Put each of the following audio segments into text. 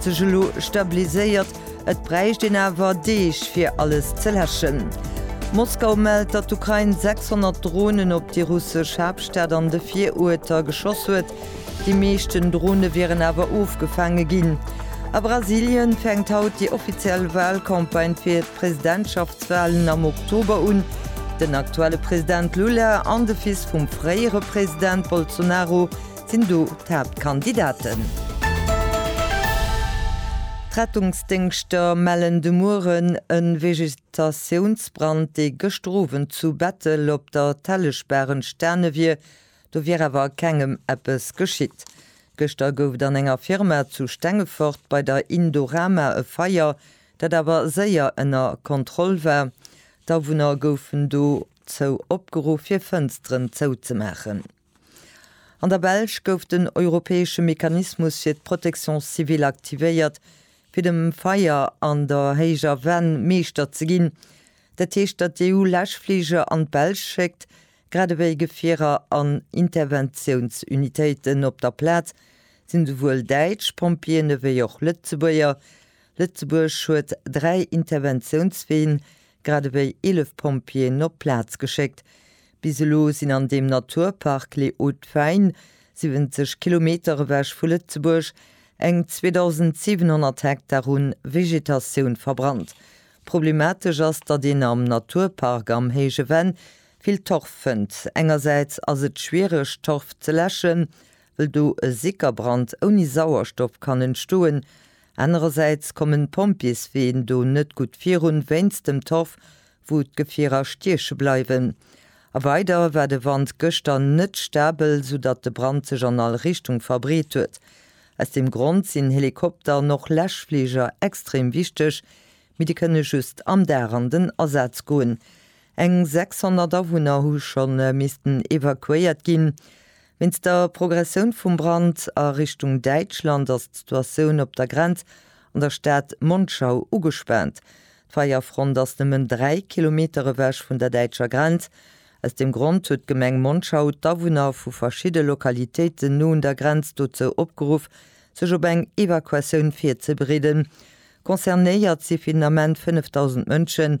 Sech elo stabiliséiert. Et bräicht een awer Deeg fir alles ze läschen. Moskau mellt, datt d'Ukrain 600 Dronen op déi russesch Haaptstad an de Viruerter geschoss huet. Déi meeschten Drone wieren awer ofgefaange ginn. A Brasilien fänkt haut déi offiziell Walcampagne fir d'Presidentschaftswalen am Oktober un. Den aktuelle President Lula an de Fils vum fréiere President Bolsonaro sinn do d'Haaptkandidaten. D'Rettungsdéngschter mellen de Mueren e Vegetatiounsbrand, dee gëschter Owend zu Bettel op der Telleschbaach entstane wier. Do wier awer kengem eppes geschitt. Gëschter gouf et an enger Firma zu Stengefort bei der Indorama e Feier, dat awer séier ënner Kontroll war. D'Awunner goufen dozou opgeruff, hir Fënsteren zouzemaachen. An der Belsch gouf den europäesche Mechanismus fir d'Protection civile aktivéiert, fir dem Feier an der héijer Venn Meeschter ze ginn. Dat heescht, datt d'EU Läschfliger an d'Belsch schéckt, grad ewéi Gefierer an Interventiounsunitéiten. Op der Plaz sinn esouwuel däitsch Pompjeeën ewéi och Lëtzebuerger. Lëtzebuerg huet dräi Interventiounsween, grad ewéi 11 Pompjeeën op d'Plaz geschéckt. Bis elo sinn an deem Naturpark Les Hauts Fays, 70 Kilometer ewech vu Lëtzebuerg, eng 2.700 Hektar u Vegetatioun verbrannt. Problematesch ass, datt een am Naturpark am Héije Venn vill Torf fënnt. Engersäits ass et schwiereg Torf ze läschen, wëll do e Sickerbrand ouni Sauerstoff kann entstoen, Anerersäits kommen d'Pompjeesween do net gutt virun, wéinst dem Torf, wou d'Gefierer stieche bleiwen. A weider war de Wand gëschter net stabel, soudatt de Brand sech an all Richtung verbreet huet. Aus deem Grond sinn Helikopter an och Läschfliger extrem wichteg, mee déi kënne just am Dag an den Asaz goen. Eng 600 Awunner hu scho missten evakuéiert ginn. Wéinst der Progressioun vum Brand a Richtung Däitschland ass d'Situatioun op der Grenz an der Stad Monschau ugespaant. D'Feierfront ass nëmmen 3 Kilometer ewech vun der däitscher Grenz. Aus deem Grond huet d'Gemeng Monschau d'Awunner vu verschidde Lokalitéiten no un der Grenz dozou opgeruff, sech op eng Evakuatioun virzebereeden. Concernéiert si finalement 5.000 Mënschen,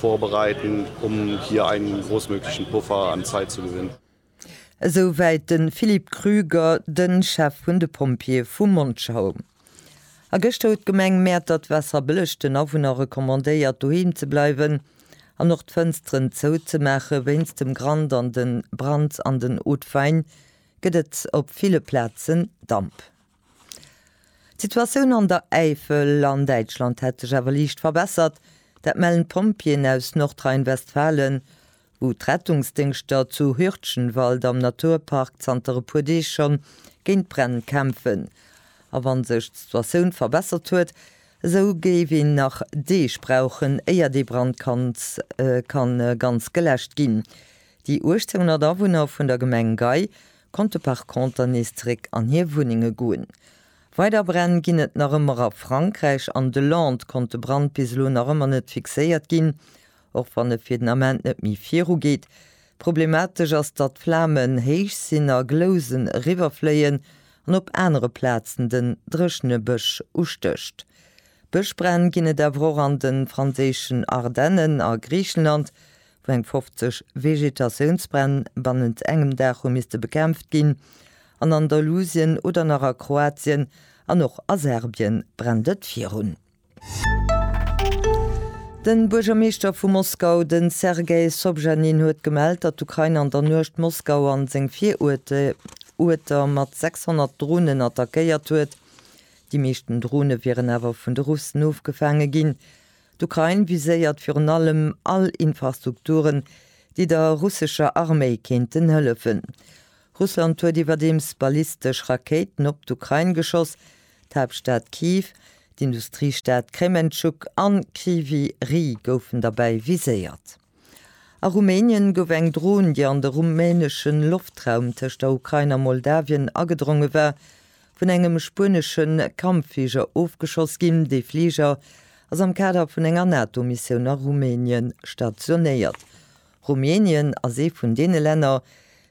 Vorbereiten, um hier einen großmöglichen Puffer an Zeit zu gewinnen. Esou wäit de Philippe Krüger, de Chef vun de Pompjeeë vu Monschau. A gëschter huet d'Gemeng Mäertert d'Waasserbëlleg den Awunner recommandéiert, doheem ze bleiwen an och d'Fënsteren zou ze maachen. Wéinst dem Grand an de Brand an den Haut-de-Faine gëtt et op ville Plazen Damp. D'Situatioun an der Äifel an Däitschland hätt sech awer liicht verbessert. Dat mellen d'Pompjeeën aus Nordrhein-Westfalen, wou d'Rettungsdéngschter zu Hürtgenwald am Naturpark zanter e puer Deeg schonn géint d'Bränn kämpfen. A wa sech d'Situatioun verbessert huet, esou géif een nach Deeg brauchen, éier dee Brand kann ganz geläscht ginn. Déi 1800 Awunner vun der Gemeng Gei konnte par conter nees zeréck an hir Wunnenge goen. Weider Bränn ginn et nach ëmmer a Frankräich. An de Landes konnt de Brand bis elo nach ëmmer net fixéiert ginn, och wann e fir den Ament net méi viru geet. Problematesch ass, datt d'Flamen héich sinn a Glousen eriwwerfléien an op anere Plazen den dréchene Bësch ustécht. Bëschbränn ginn et awer och an de franséischen Ardennen, a Griichenland, wou eng 50 Vegetatiounsbränn bannent engem Dag hu misste bekämpft ginn, an Andalusien oder nach a Kroatien an och a Serbien brennt et virun. De Buergermeeschter vu Moskau, de Sergei Sobjanin, huet gemellt, datt d'Ukrain an der Nuecht Moskau a seng Viruerter mat 600 Dronen attackéiert huet. Déi meeschten Drone wieren awer vun de Russen ofgefaange ginn. D'Ukrain viséiert virun allem all Infrastrukturen, déi der russescher Arméi kéinten hëllefen. Russland huet iwwerdeems ballistesch Rakéiten op d'Ukrain geschoss. D'Haaptstad Kyiv, d'Industriestad Krementschuk an Kryvyi Rih goufen derbäi viséiert. A Rumänien gouf eng Dron, déi an de rumänesche Loftraum tëscht der Ukrain a Moldawien agedronge war, vun engem spuenesche Kampffliger ofgeschoss ginn. Dee Fliger ass am Kader vun enger NATO-Missioun a Rumänien stationéiert. Rumänien ass ee vun deene Länner,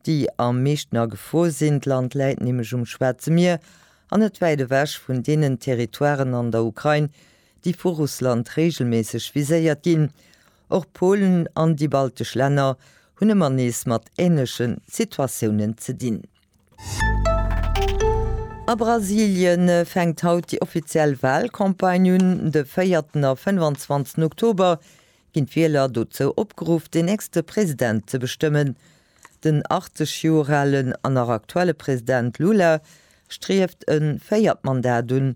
déi am meeschten a Gefor sinn. D'Land läit nämlech um Schwaarze Mier an net wäit ewech vun deenen Territoiren an der Ukrain, déi vu Russland reegelméisseg viséiert ginn. Och Polen an déi baltesch Länner hunn ëmmer nees mat änleche Situatiounen ze dinn. A Brasilie fänkt haut déi offiziell Walcampagne un. De véierten a fënnwanzwanzten Oktober ginn d'Wieler dozou opgeruff, den nächste President ze bestëmmen. Den 80 Joer alen an nach aktuelle President Lula strieft e véiert Mandat un.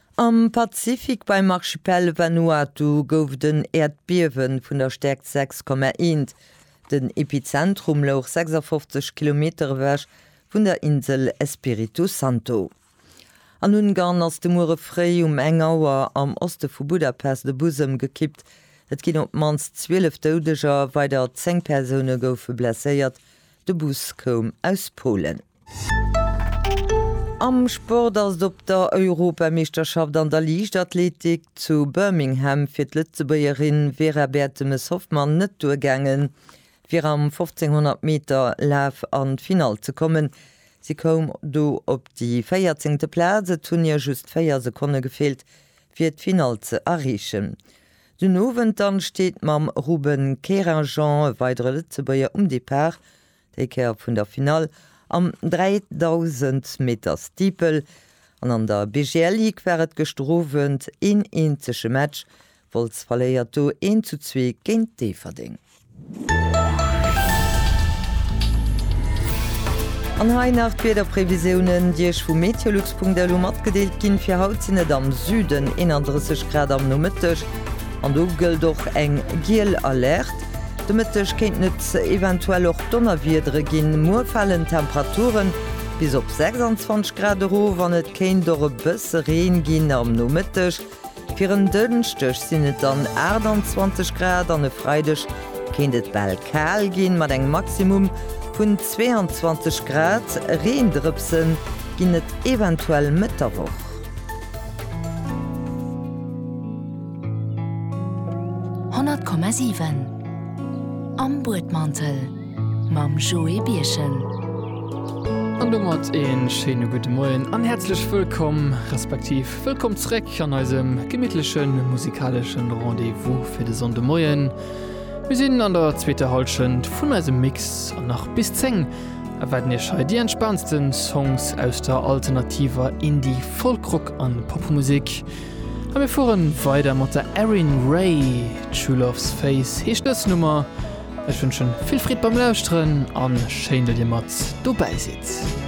Am Pazifik beim Archipel Vanuatu gouf et en Äerdbiewe vun der Stäerkt 6,1. Den Epizentrum louch 56 Kilometer ewech vun der Insel Espiritu Santo. An Ungarn ass de Muere fréi um eng Auer am Oste vu Budapest e Bus ëmgekippt. Et ginn op d'mannst 12 Doudeger, weider 10 Persoune goufe blesséiert. De Bus koum aus Polen. Am Sport ass et op der Europameeschterschaft an der Liichtathletik zu Birmingham fir d'Lëtzebuergerin Vera Bertemes-Hoffmann net duergaangen, fir am 1500 Meter Laf an d'Finall ze kommen. Si koum do op déi véierzéngte Plaz, et hunn hir just véier Sekonne gefeelt, fir d'Finall ze erreechen. Den Owend dann steet mam Ruben Kerajan e weidere Lëtzebuerger um Depart, Déi Kéier vun der Finall am 3000 Meter Steeple. An an der BGL Ligue war et gëschter Owend een eenzege Match, Wolz verléiert do 1 zu 2 géint Déifferdeng. An hei nach d'Wiederprevisiounen, déi Iech vu meteolux.lu matgedeelt ginn. Fir haut sinn et am Süden 31 Grad am Nomëtteg an do gëllt och eng giel Alerte. De Mëtteg kéinten et eventuell och Donnerwiedere ginn. Muer falen d'Temperaturen bis op 26 Grad erof an et kéint och e bësse Reen ginn am Nomëtteg. Fir en Dënschdeg sinn et dann 28 Grad an e Freideg kéint et bal kal ginn, mat engem Maximum vun 22 Grad. Reendrëpse ginn et eventuell Mëtt der Woch. 100,7 Am Buedmantel mam Joé Birchen. An domat ee schéine gudde Moien an häerzlech wëllkomm, respektiv wëllkomm zréck an eisem gemittleche musikalesche Rendez-vous fir de Sonndemoien. Mir sinn an der zweeter Hallschent vun eisem Mix an nach bis 10 erwaarden iech hei déi entspaantste Songs aus der alternativer Indie-, Folk-, Rock an Popmusek. A mir fuere weider mat der Erin Ray. True Love's Face heescht dës Nummer. Ech wënschen vill Freed beim Lauschteren an schéin, datt dir mat dobäi sidd.